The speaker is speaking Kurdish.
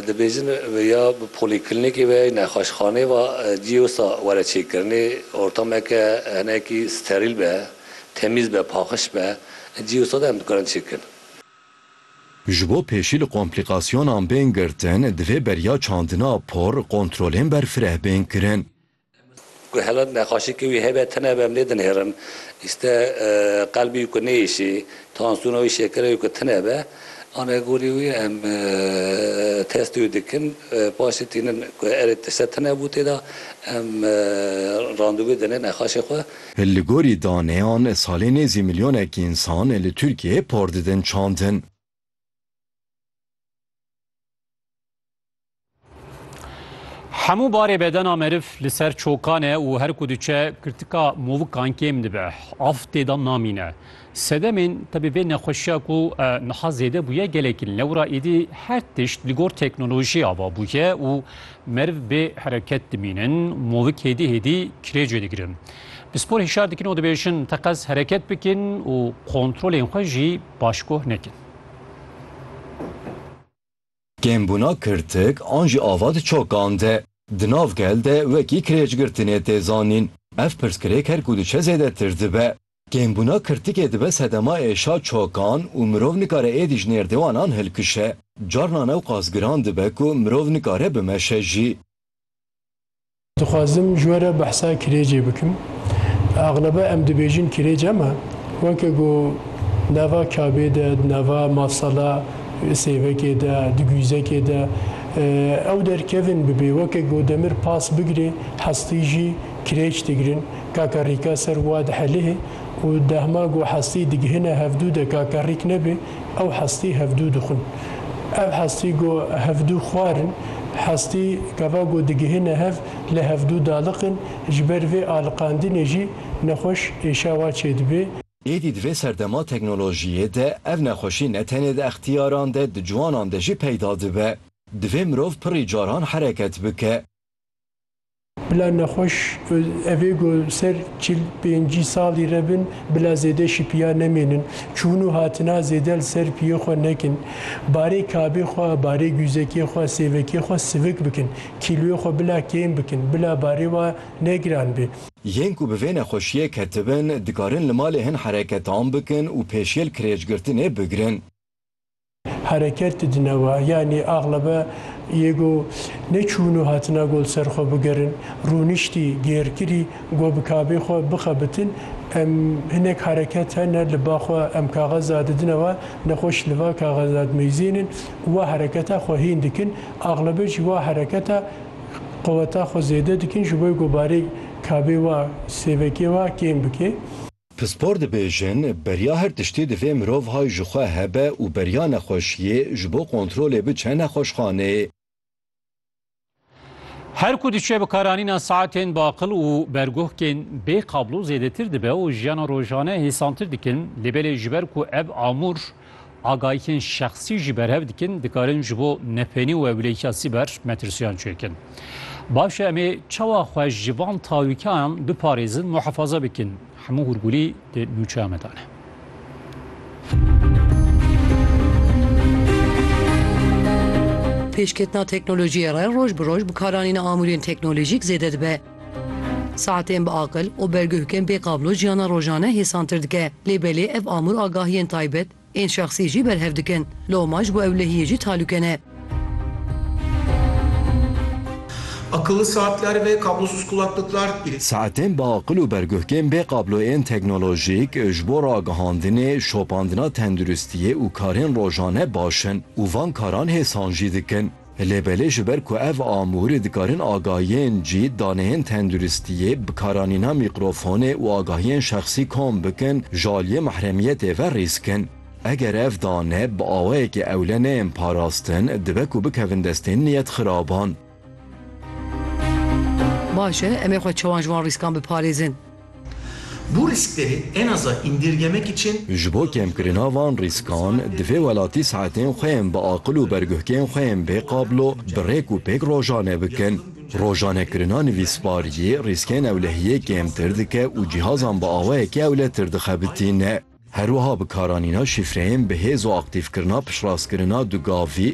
Dibêjin ya bi polîklînîkê ve, nexweşxaneyê ve cî wisa were çêkirinê, ortameke hinekî sterîl be, temîz be, paxiş be, cî wisa de em dikarin çêkirin. Ji bo pêşî li komplîkasyonan bên girtin, divê beriya çandina por, kontrolên berfireh bên kirin. Ku hela neqaşîkê wî hebe tune be em lê dinêrin. Îste qelbî wî ku nêişî, tansiyona wî şekera wî ku tune be. Ane gorî wî em testê wî dikin. Paşê tînin ku erê ti se tune bû tê de em randevû dine neqaşê xwe. Li gorî daneyan salê nêzî milyonekî însan li Tirkiyeyê par didin çandin. Hemû barê bedena meriv li ser çokan e û her ku diçe kirtika movikan kêm dibe. Av têdan namîne. Sedemên tebî vê nexweşiya ku niha zêde bûye gelekî lewra êdî her tişt li gor teknolojiyê ava bûye û meriv bê hereket dimînin, movik hêdî hêdî kirêcê digirin. Pispor hişyar dikin û dibêjin teqez hereket bikin û kontrolên xwe jî başkoh nekin. Kêmbûna kirtik an jî ava di çokan de, di nav gel de wekî kirêcgirtinê tê zanîn. Ev pirsgirêk her ku diçe zêdetir dibe. Kêmbûna kirtikê dibe sedema êşa çokan û mirov nikare êdî ji nêrdêwanan hilkişe. Carnan ew qasgiran dibe ku mirov nikare bimeşe jî. Dixwazim ji we re behsa kirêcê bikim. Exlebe em dibêjin kirêc em e. Weke ku nava kabê de, di nava mafsala sêvekê de, di guyzekê de ew derkevin bibê. Weke ku demir pas bigirê, hestî jî kirêc digirin. Kakarîka ser wa dihelihê û dehma ku hestî digihine hevdû de kakarîk nebê. ew hestî hevdû dixwin. Ev hestî go hevdû xwar in. Hestî gava go digihîne hev lê hevdû daliqin. Ji ber vê aliqandinê jî nexweş êşawa çêdibê. Êdî di vê serdema teknolojiyê de ev nexweşî ne tenê di extiyaran de di ciwanan de jî peyda dibe. Divê mirov pirrî caran hereket bike. Bila nexweş evê ku ser çil pêncî salî re bin bila zêde şipiya nemênin. Çûn û hatina zêde li ser piyê xwe nekin. Barê kabê xwe, barê guzekê xwe, sêvekê xwe sivik bikin. Kîloyê xwe bila kêm bikin. Bila barê we ne giran be. Yên ku bi vê nexweşiyê ketibin dikarin li malê hin hereketan bikin û pêşiyê li kirêcgirtinê bigrin. Hereket didine wa. Yanî axlebe yê go neçûn û hatina go li ser xwe bigerin, rûniştî, gêrkirî, go bi kabê xwe bixebitin. Em hinek hereket hene li ba xwe em kaxeza didine wa, nexweş li va kaxeza dimeyzênin û wa hereketa xwe hîn dikin. Axlebe jî wa hereketa quweta xwe zêde dikin ji bo ku barê kabê wa, sêvekê wa kêm bike. Pispor dibêjin, beriya her tiştî divê mirov hay ji xwe hebe û beriya nexweşiyê ji bo kontrolê biçe nexweşxanê. Her ku diçe bi karanîna saetên baqil û berguhkên bê kablo zêdetir dibe û jiyana rojane hêsantir dikin lê belê ji ber ku ev amûr Agahiyên şexsî jî berhev dikin, dikarin ji bo nefênî û ewlehîka sîber metirsiyan çêkin. Baş e em ê çawa xwe ji van talûkayan biparêzin, muhefaza bikin. Hemû hûrgûlî di nûçeya me de ne. Pêşketina teknolojiyê re roj bi roj bikaranîna amûrên teknolojîk zêde dibe. Saetên bi aqil û berguhkên bê qablo jiyana rojane hêsantir dike. Lê belê ev amûr agahiyên taybet ên şexsî jî berhev dikin. Loma ji bo ew lehiyê jî talûke ne. Akıllı saatler ve kablosuz kulaklıklar ile. Saetên bi aqil û berguhkên bê qablo ên teknolojîk ji bo ragihandinê, şopandina tenduristiyê û karên rojane baş in û van karan hêsan jî dikin. Lê belê ji ber ku ev amûr dikarin agahiyên cî, daneyên tenduristiyê, bikaranîna mîkrofonê û agahiyên şexsî kom bikin, ji aliyê mehremiyetê ve rîsk in. Eger ev dane bi awayekî ewle neyên parastin, dibe ku bikevin destên niyetxiraban. Baş e, em ê xwe çawan ji wan rîskan biparêzin? Bu rîskderê en aza îndirgemekî çin. Ji bo kêmkirina van rîskan, divê welatî saetên xwe yên bi aqil û berguhkên xwe yên bê qablo bi rêk û pêk rojane bikin. Rojanekirina nivîsbariyê rîskên ewlehiyê kêmtir dike û cîhazan bi awayekî ewletir dixebitîne. Her wiha bikaranîna şîfreyên bi hêz û aktîfkirina piştrast kirina du gavî,